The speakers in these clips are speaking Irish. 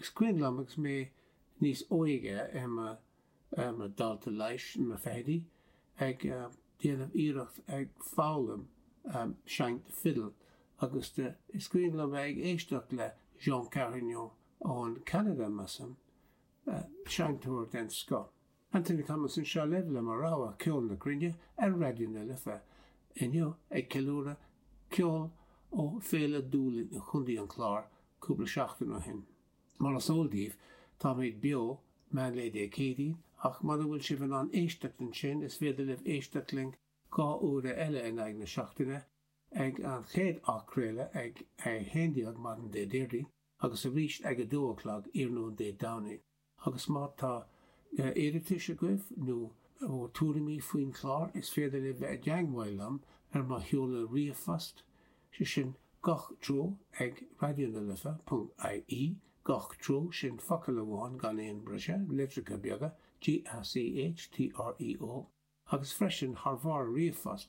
Is cuimhin liom agus mé níos óige i mo dhalta leighis sna fichidí ag déanamh iarracht ag foghlaim seinnt fidil agus is cuimhin liom bheith ag éisteacht le Jean Carignon ó Cheanada measaim, seinnteoir den scoth. Anthony Thomas anseo libh le mo rogha Ceol na Cruinne ar Raidió na Life inniu ag ceiliúradh ceol ó Fhéile Dúlainn i gContae an Chláir cúpla seachtain ó shin. Mar is eol daoibh, táimid beo meán lae Dé Céadaoin ach mura bhfuil sibh in ann éisteacht ansin is féidir libh éisteacht linn dhá uair eile in aghaidh na seachtaine leis an chéad athchraoladh ag a 11 maidin Déardaoin agus arís ag 2 a chlog iarnóin Dé Domhnaigh. Agus má tá iarratais agaibh nó tuairimí faoin chlár is féidir libh dul i dteagmháil liom ar mo sheoladh ríomhphost, sé sin gach treo ag raidionalife.ie, gach treo sin focal amháin gan aon briseadh, litreacha beaga, GACH, TREO, agus freisin tabhair ríomhphost.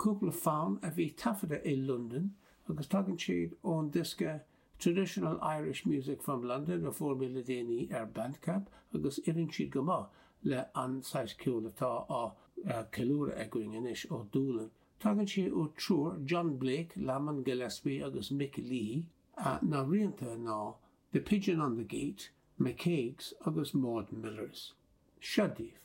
Cúpla fonn a bhí taifeadta i Londain agus tagann siad ón diosca Traditional Irish Music from London a fuair mé le déanaí ar Bandcamp agus oireann siad go maith le an saghas ceoil atá á ceiliúradh againn anois ó Dúlainn. Tagann siad ó triúr, John Blake, Lamond Gillespie agus Mick Leahy. Na rianta ná The Pigeon on the Gate, McCague's agus Maud Miller's. Seo daoibh.